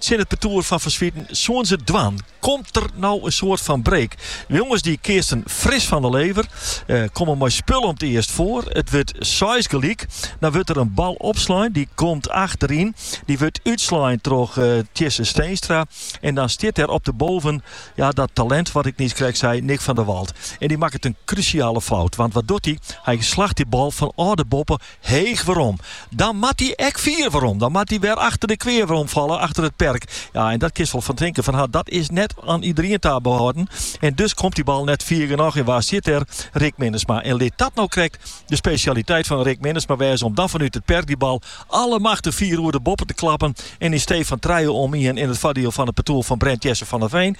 tsjin it partoer fan Van Zwieten soenen se it dwaan. Komt der no in soart fan break? De jonges dy keatsten fris fan de lever, eh, komme mei spul om it earst foar. It wurdt seis gelyk. Dan wurdt der in bal opslein, dy komt achteryn. Dy wurdt útslein troch uh, eh, Tjisse Steenstra. En dan stiet der op de boven ja, dat talent wat ik niiskrekt sei, Nick van der Walt. En dy makket in krúsjale fout. Want wat doet hij? Hy slacht dy bal fanôf de boppe Heech werom. Dan moat dy ek fier werom. Dan moat dy wer achter de kwea werom falle, achter it perk. Ja, en dat kinst wol fan tinken fan ha, dat is net oan iederien ta behâlden. En dus komt dy bal net fier genôch en wa sit dêr? Rick Minnesma. En lit dat no krekt de spesjaliteit fan Rick Minnesma wêze om dan fanút it perk dy bal allemachtig fier oer de boppe te klappen en yn stee fan trije om ien in it foardiel fan it partoer fan Brent Jesse van Veen,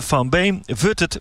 van Beem, wurdt it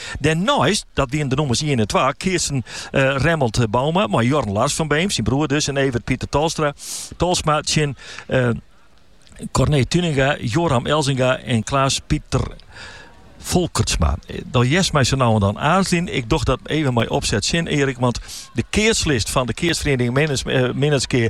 Dêrneist, dat wienen de nûmers ien en twa, keatse Remmelt Bouma mei Jorn Lars fan Beem, syn broer dus, en Evert Pieter Tolstra, Tolsma tsjin Corné Tuinenga, Yoram Elzinga en Klaas Pieter Folkertsma. Dan hearst my sa no en dan aarzeljen. Ik doch dat even mei opsetsin, Erik. Want de keatslist fan de keatsferiening eh, Minnertsgea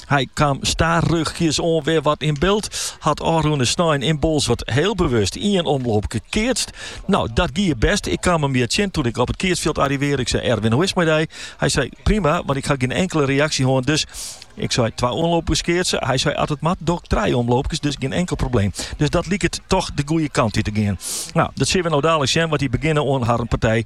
Hy kaam stadichjes oan wer wat yn byld. Hat ôfrûne snein yn Bolsward heel bewust ien omloopke keatst. No, dat gie best. Ik kaam him hjir tsjin toen ik op it keatsfjild arrivearre. Ik sei, Erwin, hoe is it mei dy? Hy sei, prima, want ik ha gjin inkele reaksje hân, dus. Ik sei, twa omloopkes keatse? Hy sei, as it moat, doch ik trije omloopkes, dus gjin inkel probleem. Dus dat liket toch de goeie kant út te gean. No, dat sille we no dadelijk sjen, want dy begjinne oan harren partij.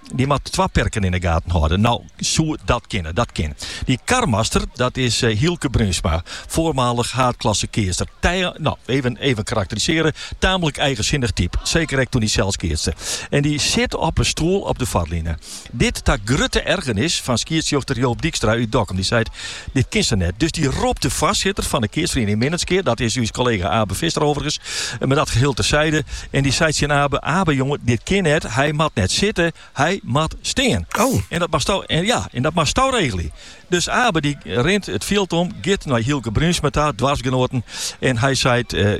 Dy moat twa perken yn de gaten hâlde. No soe dat kinne, dat kin. Dy karmaster, dat is eh, Hylke Bruinsma, voormalig haadklasse keatser. No, even, even karakterisearje, tamelijk eigenzinnig typ. Zeker ek toen dy sels keatste. En dy sit op in stoel op de foarline. Dit ta grutte ergernis fan skiedsrjochter Joop Dijkstra út Dokkum. Dy sei, Dit kin sa net. Dus dy ropt de foarsitter fan de keatsferiening Minnertsgea, dat is ús kollega Abe Visser overigens, mar dat geheel terside, en dy seit tsjin Abe, Abe jonge, dit kin net, hy moat net sitte, hy moat stean. Oh. En dat moatsto, en ja, en dat moatsto regelje. Dus Abe dy rint it fjild om, giet nei Hylke Bruinsma ta, doarpsgenoaten, en hy seit, eh,